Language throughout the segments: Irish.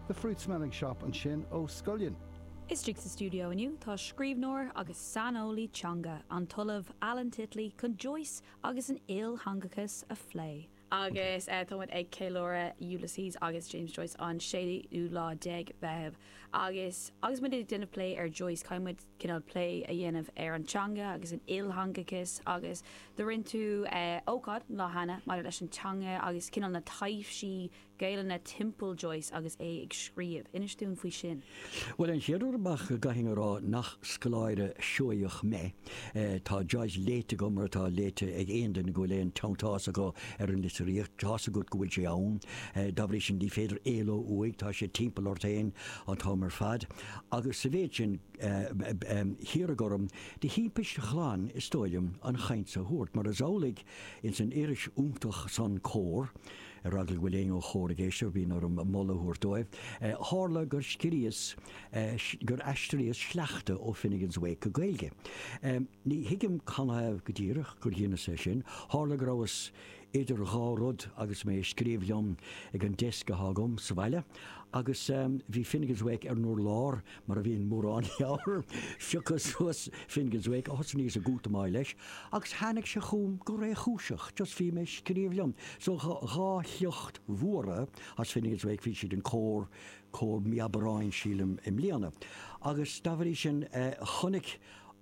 The Fruit Smelling Shop ansin ó Scullion. Istigh sa stiúideo inniu tá scríbhneoir agus saineolaí teanga, an tOllamh Alan Titley, chun Joyce agus an iltheangachas a phlé. Agus tá muid ag ceiliúradh Ulysses agus James Joyce an séú lá déag Mheitheamh agus agus muid ag déanamh plé ar Joyce, caithfidh muid, cineál plé a dhéanamh ar an teanga agus an iltheangachas agus do rinn tú ócáid lá cheana maidir leis an teanga agus cineál na taibhsí Gaelainne timpeall Joyce agus é ag scríobh. Inis dúinn faoi sin. Bhuel, an chéad rud amach go gcaithfinn a rá nach scoláire Seoigheach mé. Tá Joyce léite agam mar atá léite ag aon duine go bhfuil aon teanntás acu ar an litríocht. Tá's agat go bhfuil sé ann. Dá bhrí sin ní féidir éaló uaidh, tá sé timpeall ort féin an t-am ar fad. Agus sa mhéid sin, hiarradh orm, de thimpist ghlan, is dóigh liom, an chaint seo a thabhairt, mar is amhlaidh, ins an iris fhiúntach san Comhar, ar eagla go bhfuil éinne ó Chomhar ag éisteacht, bíonn orm moladh a thabhairt dóibh, tharla gur scríos, gur aistríos sleachta ó Finnegans Wake go Gaeilge. Ní thuigim canathaobh go díreach gur dheineas é sin, tharla go rabhas idir dhá rud agus mé ag scríobh liom ag an desk atá agam sa bhaile agus bhí Finnegans Wake ar an urlár mar a bhíonn mórán leabhar. Phiocas suas Finnegans Wake is thosnaíos ag útamáil leis agus tháinig sé chugam go réchúiseach, just bhí mé ag scríobh liom so dhá shliocht mhóra as Finnegans Wake, bhí siad in Comhar, Comhar mí Aibreáin sílim i mbliana agus dá bhrí sin chonaic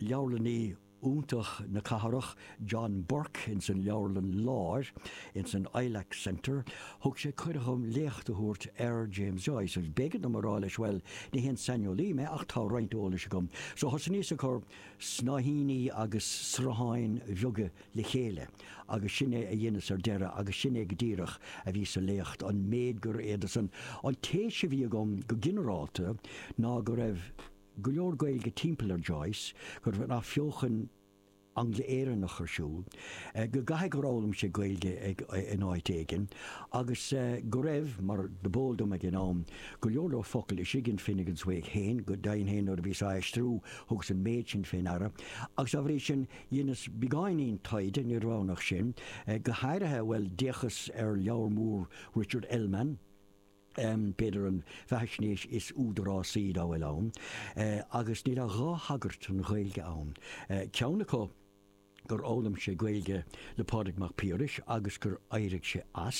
leabharlannaí iontach na cathrach, John Burke ins an Leabharlann Láir, ins an Ilac Centre, thug sé cuireadh dhom léacht a thabhairt ar James Joyce agus b'éigean dom a rá leis bhuel, ní haon saineolaí mé ach tá roinnt eolais agam. So thosnaíos ag cur snáithíní agus srutháin bheaga le chéile agus sin é a dheineas ar deireadh agus sin é go díreach a bhí sa léacht, an méid gur fhéadas. An téis a bhí agam go ginearálta ná go raibh. go leor Gaeilge timpeall ar Joyce, go raibh an Athbheochan Angla-Éireannach ar siúl, go gcaithfidh gur fhoghlaim sé Gaeilge in áit éigin, agus go raibh, mar dob eol dom ag an am, go leor leor focal istigh in Finnegans Wake féin, go deimhin féin nuair a bhíos á aistriú thugas an méid sin fé ndeara, agus dá bhrí sin dheineas beagáinín taighde, ní roghnach sin, go hairithe, bhuel, d'fhéachas ar leabhar mór Richard Ellmann, b'fhéidir an bheathaisnéis is údarásaí dá bhfuil ann, agus níl ach dhá thagairt don Ghaeilge ann, ceann acu gur fhoghlaim sé Gaeilge le Pádraig Mac Piarais agus gur éirigh sé as,